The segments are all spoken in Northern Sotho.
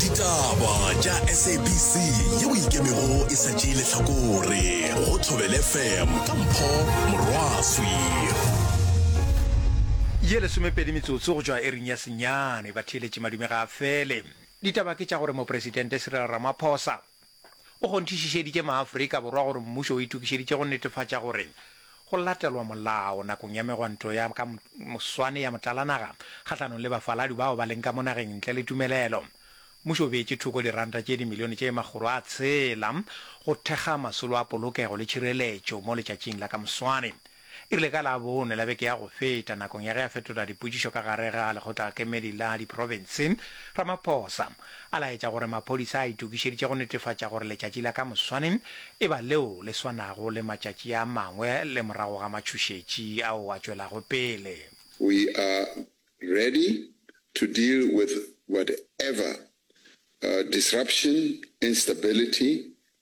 ditaba tša sabc yeo ikemego e sa tšee lehlakore go thobele fm ka mpho morwaswi ye lesomepedi metsotso go tšwa ering ya senyane batheeletši madume ga a fele ditaba ke tša gore mopresidente cyril ramaphosa o kgonthišišeditše maAfrika Borwa gore mmušo o itokišeditše go netefatša gore go latelwa molao nakong ya megwanto ya ka moswane ya motlalanaga kgahlanong le bafaladi bao ba leng ka mo nageng ntle le tumelelo. Mmušo o beetše thoko diranta tše dimilione tše makgolo a tshela go thekga masolo a polokego le tšhireletšo mo letšatšing la ka moswane. E rile ka Labone la beke ya go feta, nakong ya ge a fetola dipotšišo ka gare ga Lekgotlakemedi la Diprofense, Ramaphosa a laetša gore maphodisa a itokišeditše go netefatša gore letšatši la ka moswane e ba leo le swanago le matšatši a mangwe le morago ga matšhošetši ao a tšwelago pele. We are ready to deal with whatever disruption, instability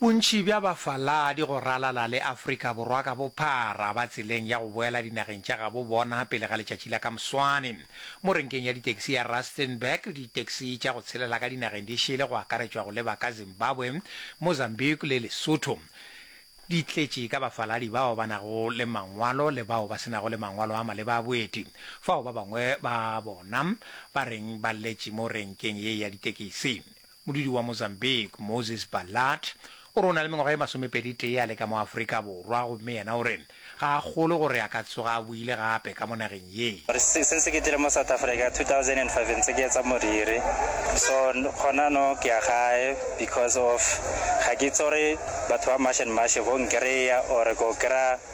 Bontši bja bafaladi go ralala le Afrika Borwa ka bophara ba tseleng ya go boela dinageng tša gabo bona pele ga letšatši la ka moswane. Mo renkeng ya ditaxi ya Rustenburg, ditaxi tša go tshelela ka dinageng di šele go akaretšwa go leba ka Zimbabwe, Mozambique le Lesotho. Di tletše ka bafaladi bao ba nago le mangwalo le bao ba se nago le mangwalo a maleba a boeti, fao ba bangwe ba bona ba reng ba letše mo renkeng ye ya ditekisi. Modudi wa Mozambique, Moses Balart, o re o na le mengwaga e masomepeditee a le ka mo Afrika Borwa gomme yena o re ga a kgolwe gore a ka tsoga a boile gape ka mo nageng ye. O re, Since ke tlile mo South Africa 2005 ntse ke etsa moriri, so gona no ke ya gae because of ga ke itse gore batho ba mash and mash bo nkreya or ko kry-a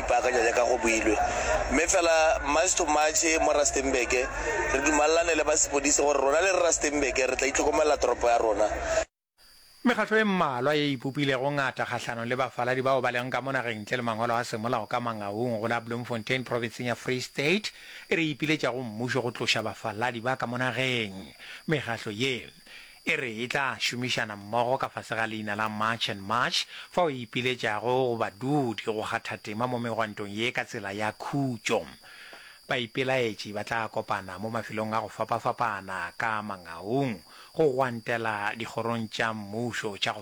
Ipaakanya jaaka go builwe. Mme fela March to March mo Rustenburg, re dumalelane le ba sepodisi gore rona le Rustenburg re tla itlhokomelela toropo ya rona. Mekgatlo e mmalwa ye e ipopilego ngata kgahlanong le bafaladi bao ba lego ka mo nageng ntle le mangwalo a semolao ka Mangaung go la Bloemfontein profenseng ya Free State e re e ipiletša go mmušo go tloša bafaladi ba ka mo nageng. Mekgatlo ye e re e tla šomišana mmogo ka fase ga leina la March and March fao e ipiletšago go badudi go kgatha tema mo megwantong ye ka tsela ya khutšo. Baipelaetši ba tla kopana mo mafelong a go fapafapana ka mangaung go gwantela dikgorong tša mmušo tša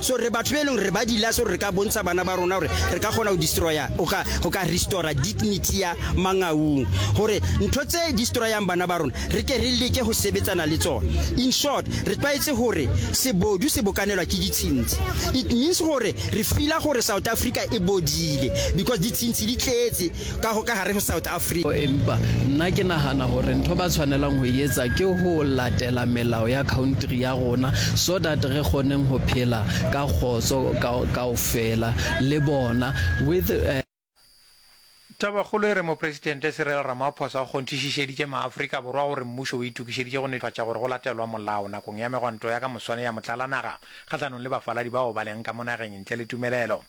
So re batho be e leng gore ba dila so re ka bontsha bana ba rona gore re ka kgona go destroya go ka go ka restora dignity ya mangaung gore ntho tse destroyang bana ba rona re ke re leke go sebetsana le tsone in short re tlwaetse gore sebodu se bokanelwa ke ditshintshi it means gore re fila gore south africa e bodile because ditshintshi di tletse Ka go ka gare go South Africa. Empa nna ke nagana gore ntho ba tshwanelang go e etsa ke go latela melao ya country ya rona so that re kgoneng go phela ka kgotso ka kaofela le bona with eh, Tabakgolo e re Mopresidente Cyril Ramaphosa o kgonthišišeditše maAfrika Borwa gore mmušo o itokišeditše go netefatša gore go latelwa molao nakong ya megwanto ya ka moswane ya motlalanaga kgahlanong le bafaladi bao ba leng ka mo nageng ntle le tumelelo.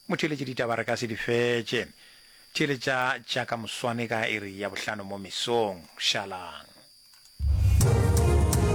Motheeletše ditaba re ka se di fetše. Theeletša tša ka moswane ka iri ya bohlano mo mesong. Šalang.